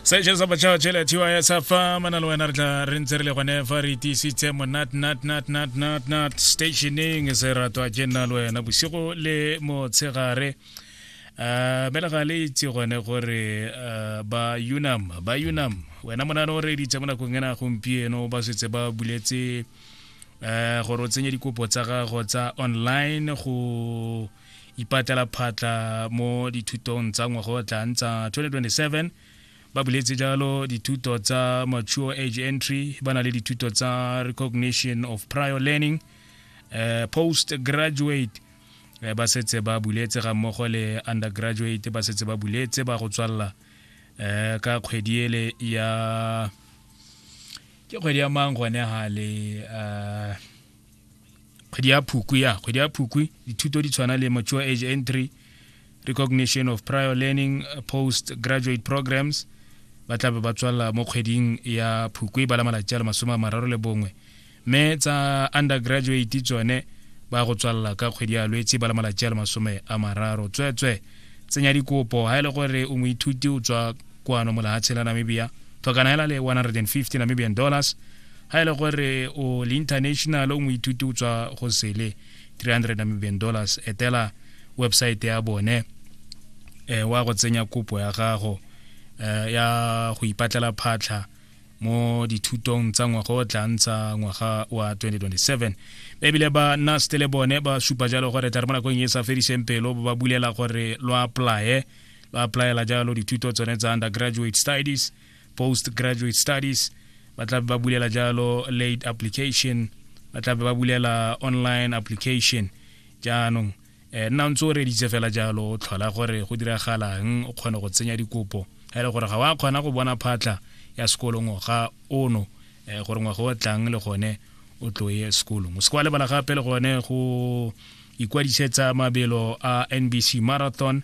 session sa batšha tšhele thiwa ya sa fa mana le wena re tla re ntse re le gone fa re tiisitse monat nat nat nat nat nat stationing se ratwa ke nna le wena bosigo le motshegare um bela ga le itse gone gore uh, ba unam ba unam wena monane o reditse mo nakong ena gompieno ba setse ba buletse um gore o tsenye dikopo tsa gago tsa online go ipatlela phatla mo dithutong tsa ngwaga o tlang tsa 2027 ba buletse jalo dithuto tsa mature age entry ba na le dithuto tsa recognition of prior learning uh, post graduate eh, ba setse ba buletse ga mmogo le undergraduate ba setse ba buletse ba go tswalela um ka kgwedi ele ya ke kgwedi ya mang gone gale um kgwedi ya phukwi ya kgwedi ya phukwi dithuto di tshwana le mature age entry recognition of prior learning uh, post graduate programs ba tla be ba tswalela mo kgweding ya phukwe ba la malatsi a le masome a mararo le bongwe mme tsa undergraduate tsone ba go tswalela ka kgwedi ya lwetse ba la malatsi a le masome a mararo tsweetswe tsenya dikopo ga e le gore o moithuti o tswa kwano molahatshe la namibia tlhokana hela le 150 namibian dollars ga e le gore o le international o moithuti o tswa go sele 300 namibian dollars etela website ya bone eh, wa go tsenya kopo ya gago eh, ya go ipatlela phatlha mo dithutong tsa ngwaga o tla ntsha ngwaga wa 2027 ebile ba nast le bone ba supa jalo gore tla re mo nakong e sa fediseng pelo ba bulela gore lo apply lo applyela jalo dithuto tsone tsa undergraduate studies post graduate studies ba tla ba bulela jalo late application ba tla ba bulela online application jaanong eh nna ntse o reditse fela jalo o tlhola gore go diragalang o kgone go tsenya dikopo ga ile gore ga wa kgona go bona phatlha ya sekolo ngwaga ono eh gore ngwaga o tlang le gone o tlo ye sekolong o se kwa lebala gape le gone go ikwadisetsa mabelo a NBC Marathon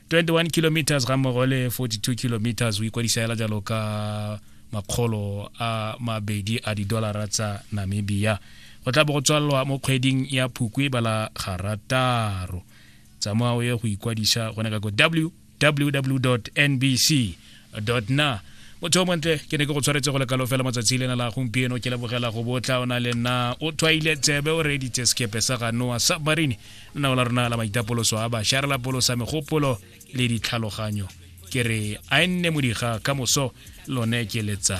21 kilometers ga mmogo le 42 kilometers o ikwadisa hela jalo ka makgolo a mabedi a didolara tsa namibia go tla bo go tswalelwa mo kgweding ya phukwe bala garataro tsamao ye go ikwadisa gone ka ko www nbc na motho o montle ke ne ke go tshwaretse go lekalo fela matsatsi lena la gompieno ke lebogela go botla o na le nna o tshwaile tsebe o reeditse sekepe sa ga noa submarine lenao la rona la maitapoloso a bašwa re lapolosa megopolo le ditlhaloganyo ke re a e nne modiga ka moso lone ke letsa